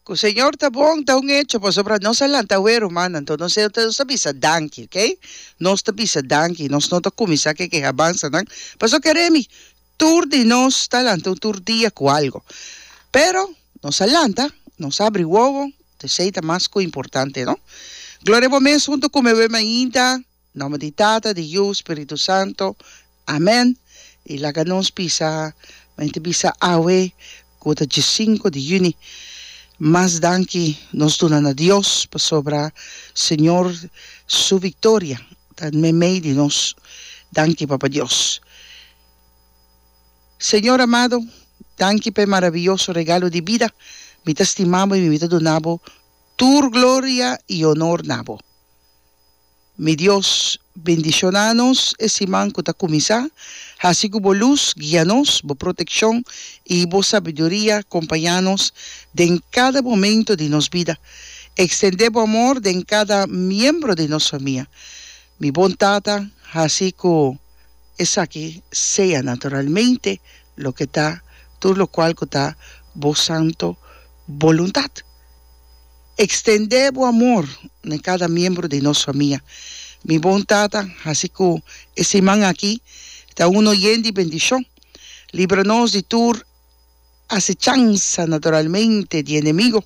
Cu Señor ta bon ta un hecho pasobra nos a lanta awe rumannan to nos ta nos ta bisa danki ok nos ta bisa danki nos no ta cuminsa ke ke habansa nan paso ke remi tur di nos ta lanta un tur dia cu algo pero nos a lanta nos abri wowo te esey ta mas cu importante no Gloria bo mes hunto cu me wema ainda. Nomber di Tata, di Yu, Spiritu Santo. Amen. Y laga nos bisa, men ta bisa awe cu ta djisinku di juni, mas danki nos duna na Dios pasobra Señor su victoria ta me mei di nos. Danki Papa Dios. Señor amado, danki p'e maraviyoso regalo di bida. Mi ta stima bo y mi ta duna bo tur gloria y honor na bo. Mi Dios, bendiciona nos e siman cu ta cuminsa, haci cu bo luz guia nos, bo proteccion y bo sabiduria compaña nos den cada momento di nos bida. Extende bo amor den cada miembro di nos famia, mi bon Tata, haci cu esaki sea naturalmente loke ta tur locual cu ta bo santo boluntad. Extendé bo amor na cada miembro di nos famia. Mi bon Tata, haci cu e siman aki ta uno yen di bendicion. Libra nos di tur asechansa naturalmente di enemigo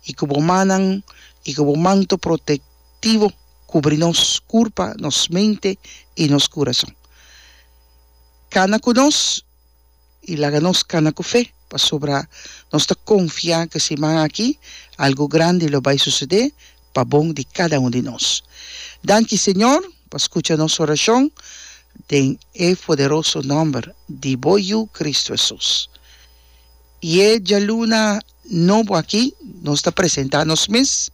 y cu bo mannan y cu bo manto protectivo cubri nos curpa, nos mente y nos curason. Cana cu nos. i laga nos kana ku fe, pasobra nos ta konfiá ku siman aki algu grandi lo bai susedé pa bon di kada un di nos. Danki, Señor, pa skucha nos orashon, den e poderoso nòmber di Bo Yu, Kristu Hesus. I e djaluna nobo aki nos ta presentá nos mes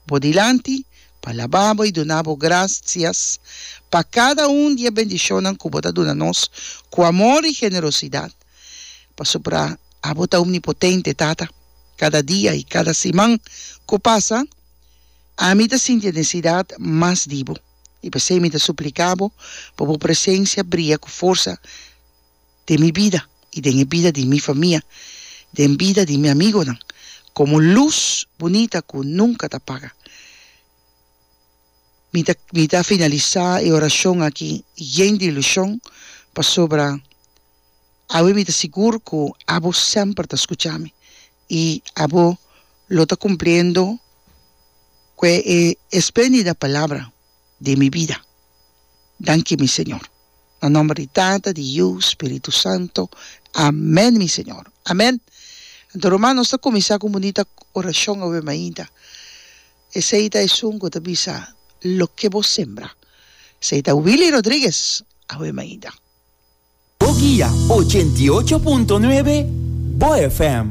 Bo dilanti, pa laba bo i duna bo grasias pa kada un di e bendishonnan ku bo ta duna nos ku amor i generosidat, pasobra abo ta omnipotente, Tata. Kada dia i kada siman ku pasa, ami ta sinti e nesesidat mas di bo, i pasobra mi ta supliká bo pa bo presensia bria ku forsa. den mi bida i den e bida di mi famia, den bida di mi amigonan, komo lus bunita ku nunka ta paga. Mi ta mi ta finalisá e orashon aki yen di ilushon, pasobra awe mi ta sigur ku abo semper ta skucha mi i abo lo ta kumpliendo kue e espléndida palabra. den mi bida. Danki mi Señor. Na nomber di Tata, di Yu, Spiritu Santo. Amen mi Señor. Amen. Anto ruman nos ta kuminsá ku un bunita orashon awe mainta. Esei ta esun ku ta bisa, Loke bo sembra. Esei ta Willy Rodriguez awe mainta. Bo guia ochenta i ocho punto nuebe, bo FM.